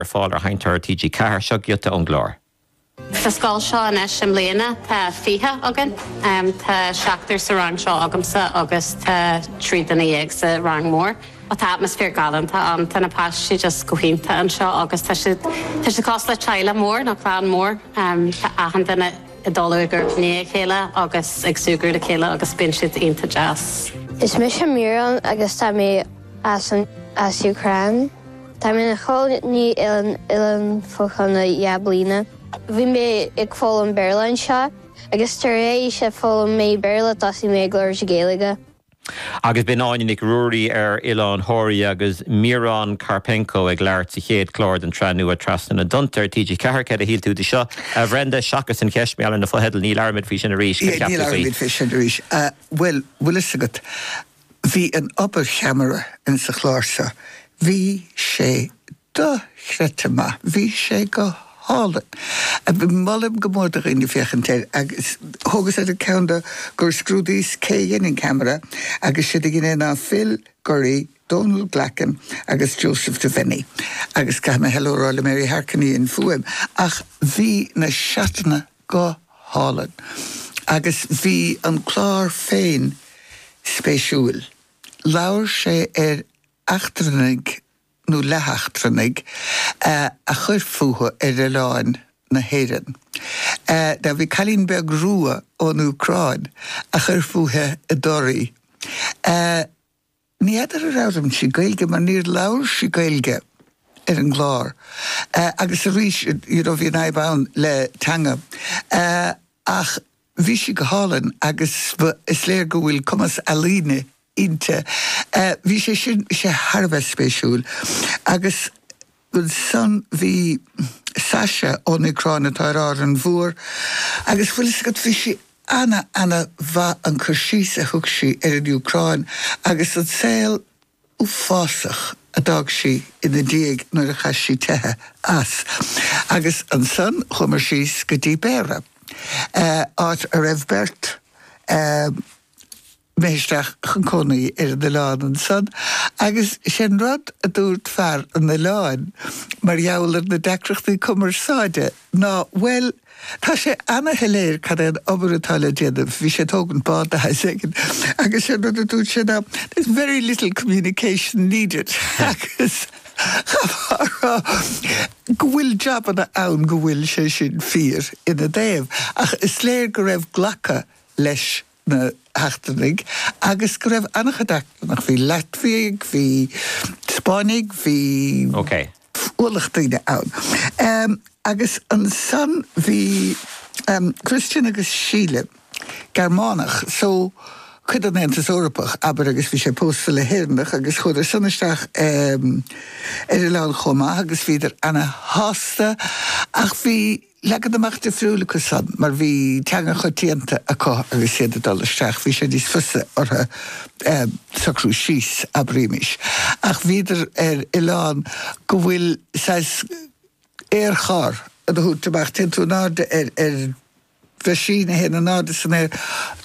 Ar fáil ar Sheinnteoir TG4, seo giota ón gclár. Sa scoil seo anois i mbliana tá fiche againn. Tá seachtar sa rang seo agamsa agus tá trí dhuine dhéag sa rang mór. Tá atmaisféar galánta ann. Tá na páistí just go hiontach anseo agus tá siad, tá siad cosúil le teaghlach mór nó clann mór. Tá achan duine ag dul i gcomhair a chéile agus ag súgradh le chéile agus bíonn siad iontach deas. Is mise Muireann agus tá mé. as an Úcráin. Táim ina chónaí ar an oileán fá choinne dhá bliana. Bhí mé ag foghlaim Béarla anseo agus tar éis a d'fhoghlaim mé Béarla tosaigh mé ag labhairt Gaeilge. Agus b'in Áine Nic Ruairí ar Oileán Thóraí agus Miron Karpenko ag labhairt sa chéad chlár den tsraith nua Trasna na dTonnta ar TG4. Cad a shíl tú de seo, a Bhrenda? Seachas an cheist mar gheall ar na fotheidil, ní labhróimid faoi sin arís, cad a cheap tú faoi? Ní labhróimid faoi sin arís, a bhfuil a fhios agat. Bhí an obair cheamara ins an chlár seo. Bhí sé dochreidte maith. Bhí sé go hálainn. Molaim go mór do dhaoine féachaint air agus thógas ard an cheann de gur scrúdaíos cé dhein an ceamara agus is iad a dhein é ná Phil Gurry, Donal Glackin agus Joseph Devenny. Agus caithfidh mé hello a rá le Mary Harkin a dhein an fhuaim ach bhí na seatanna Go hálainn. Agus bhí an clár féin spéisiúil. Labhair sé ar eachtrannaigh, nó leatheachtrannaigh, a chuir fúthu ar oileáin na hÉireann. Now bhí cailín beag rua ón Úcráin a chuir fúithi i dToraigh. Ní fheadar ar fhoghlaim sí Gaeilge mar níor labhair sí Gaeilge ar an gclár agus arís you know bhí an fhadhb ann le teanga ach bhí sí go hálainn agus is léir go bhfuil cumas ealaíne inti. Bhí sé sin, bhí sé thar a bheith spéisiúil agus. Ansan bhí Sasha ón Úcráin atá ar Árainn Mhór agus bhfuil 'fhios agat, bhí sí ana, ana mhaith an cur síos a thug sí ar an Úcráin agus an saol uafásach a d'fhág sí ina diaidh nuair a chaith sí teitheadh as. Agus ansan chuamar síos go dtí Béarra, áit a raibh beirt eh. bheith isteach chun cónaí ar an oileán ansan agus is é an rud a dúirt fear an oileáin mar gheall ar na deacrachtaí cumarsáide ná bhuel, tá sé ana-shoiléir cad é an obair atá le déanamh, bhí sé ag tógaint bád de shaghas éigin, agus is é an rud a dúirt sé ná there's very little communication needed agus chaithfeá a rá go bhfuil jabanna ann go bhfuil sé sin fíor ina dtaobh ach is léir go raibh glacadh leis an na heachtrannaigh agus go raibh an-chuid eachtrannach, bhí Laitviaigh, bhí Spáinnigh, bhí ualach daoine ann. Agus ansan bhí Christian agus Síle, Gearmánach, so cuid den Aontas Eorpach, abair, agus bhí sé pósta le hÉireannach agus chuadar san isteach ar an oileán chomh maith agus bhíodar ana-shásta ach bhí, Leagan amach difriúil acu san, mar bhí teanga choitianta acu agus iad ag dul isteach, bhí sé níos fusa orthu socrú síos, abraimis, ach bhíodar ar oileán go bhfuil saghas aerchárr á dtabhairt amach, téann tú in airde ar mheaisín a théann in airde san aer,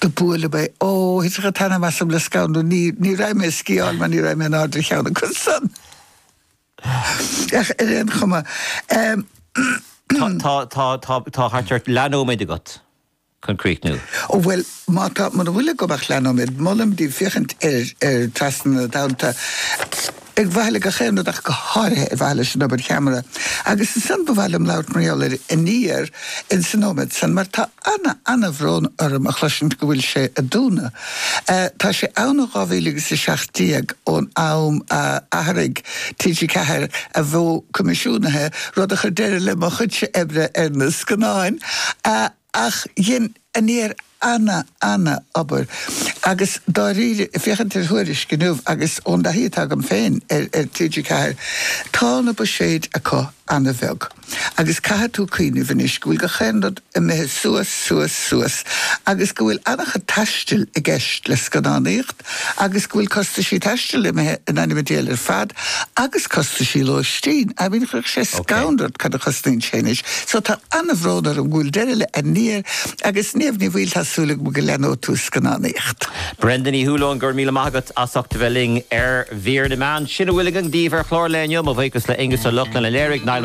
do buaileadh mé, ó, thit a' t-anam asam le scanradh, ní raibh mé a' sciáil mar ní raibh mé in airde ar cheann acu san. Ach ar aon chuma, eh. Tá, tá, tá, tá thart ar leathnóiméad agat chun críochnú. Ó bhuel, má tá, muna bhfuil agam ach leathnóiméad, molaim daoibh féachaint ar, ar Trasna na Tonnta, ar mhaithe le gach aon rud ach go háirithe ar mhaithe leis an obair cheamara. Agus ansan ba mhaith liom labhairt mar gheall ar Aniar in sa nóiméad san, mar tá, Ana, ana-bhrón orm a chloisint go bhfuil sé ag dúnadh. Eh, tá sé ann ó dhá mhíle agus a seacht déag, ón am a athraigh TG4 a mhodh coimisiúnaithe, rud a chuir deireadh le mo chuidse oibre ar na scannáin. Eh, ach dhein Aniar ana, ana-obair. Agus dáiríre, féachaint ar Thuairisc inniu agus ón dtaithí atá agam féin ar TG4, tá na buiséid acu ana-bheag. Agus caithfidh tú cuimhneamh anois go bhfuil gach aon rud imithe suas, suas, suas agus go bhfuil an-chuid taistil i gceist le scannánaíocht agus go bhfuil costaisí taistil imithe in ainm an diabhail ar fad agus costaisí lóistín. I mean, chuirfeadh sé scanradh ort cad a chosnaíonn sé anois. So tá an-bhrón orm go bhfuil deireadh le Aniar agus Niamh Ní Bhaoill, tá súil agam go leanóidh tú ag scannánaíocht. Brenda Ní Shúilleabháin, go raibh míle maith agat as ucht a bheith linn ar Mhír na Meán. Sin a bhfuil againn daoibh ar chlár an lae inniu. Mo bhuíochas le Aonghus Ó Lochlainn a léirigh, Niall Mac